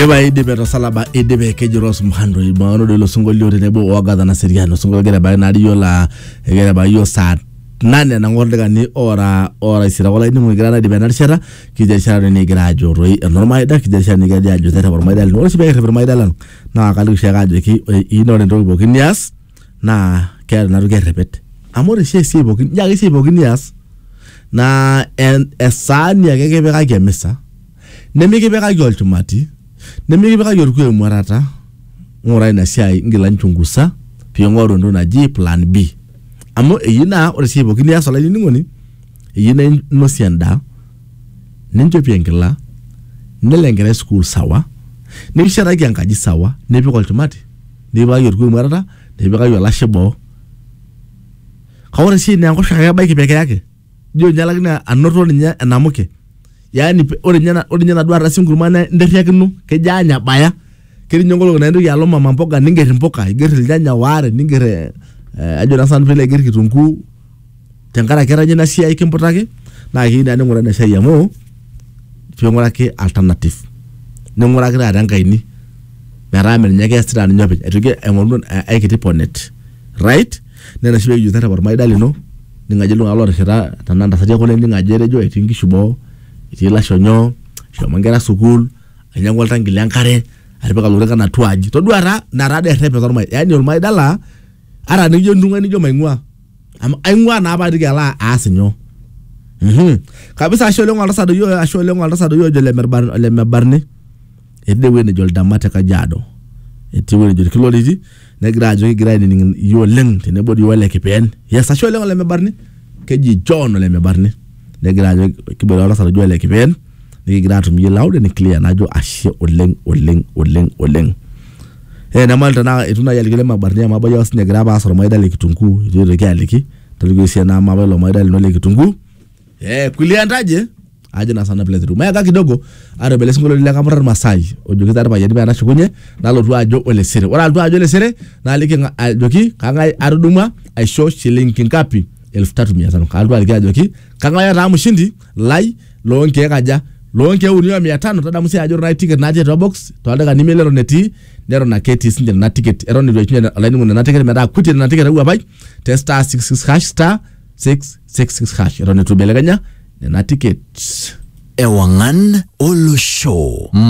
Eba idipe tosalaba idipe keji Rose Muhando ibaono dilo singolio tenebo oagatha na seriano singolio kegira ebaiki naa riyo laa kegira ebaiki yiok saa nane nang'or dakikani ora ora isira kulo ainining'oni kira naidipa ena rishata kijo erishata doi nikigira ajo toi enormaida kijo erishata nikigira doi ajo terrep ormaida lino ore oshi pekerrep irmaida lang naa kaliki oshiake ajoki ore iyie naa ore entoki pookin nias naa keeta ina toki errepet amu ore oshi esiai pookin ijo ake esiai pookin nias naa en- esaani ake kipikaki emisa Nemikipikaki olchumati, nemikipikaki olkuoo emuatata, ng'ura ina siai ngila nchungusa pee ing'oru entoki naji plan B. Amu eyieu naa ore esiai pookin nias olainining'oni, eyieu naa inosie endaa, ninchopie enkila, nelo enkerai sukuul sawa, nikishetaki enkaji sawa, nipik olchumati, nikipikaki olkuoo emuatata, nikipikaki olashe boo. Kake ore esiai naa enkoshoke ake ebaiki pee kiyaki. ijo ninye alak naa anoto ninye enamuke yaani pe- ore ninye ena- ore ninye enaduo ardasi enkurma na interriakino kejo anya baya ketii ninye nkolong'i naa intoki alo mama mboga ningerr impuka igerr ilnyanya waare ningerr eh, eh, ajo naa sinanu piilo aigerr kitunguu tenkaraki etanya ina siai kimputaki naa keyieu naa ning'uraa ina siai amu ping'uraki alternative ning'uraki taata enkaini metaa mee ninye ake eesita ninye openy aitoki aing'oru eh, aikiti ponet right Nena oshi pekijoki tarrepa ormaida lino, ining' ajo iltung'anak lotishita, tenaa ntasati ekule ining' ajo etejo etii nkishu boo, etii lasho nyoo, eshomo nkera sukuul, ainyang'ua oltanki le nkare, atipika lorikan atua aji. Todua taa ina tadi errepet ormaida. Yani ormaida la ata nijo entung'ua nijo maing'ua. Amu aing'ua naa patiki alo aas inyoo. Kabisa ashe oleng oltasat doi ojo ole mebarni. etii ewueji nejo Ildama te Kajiado, etii ewueji nejo Ilkiloriti, negira ajo kigira ainining iyie oleng tenebo dii ole Kipeen. Yes, ashe oleng ole Mebarni, keji John ole Mebarni, negira ajo kiboitare oltasat oji ole Kipeen, nikigira aatum iyie loud and clear najo ashe oleng oleng oleng oleng. Naa enyamali tenaa eitu naaji aliki ole Mebarni amu ebaiki apa sii ninye egira aas olmaida le kitunguu eitu aitoki aliki, tolikioki sii ena amu apa ilo maida lino le kitunguu. Ee kulie entaje. ajo na sana plate mayaka kidogo atobele singolo lile kamurar masai ojoki tar payani pena shukunye nalotu ajo olesere ora altu ajo olesere naliki nga- ajoki kangai atudumwa aisho shilingi ngapi elfu tatu mia tano kaltu aliki ajoki kangai ataa mshindi lai loo nkeek aja loo nkeek uni o mia tano tadamu sii ajo ore ticket natii atua box toldaika nimi leton etii neton ake etii sinche nena ticket eton eitu eishunye olainining'oni nena ticket metaa kutie nena ticket ewuapai te star 66 hash star 6 66 hash eton itu ibelekenya nena tickets ewang'an olosho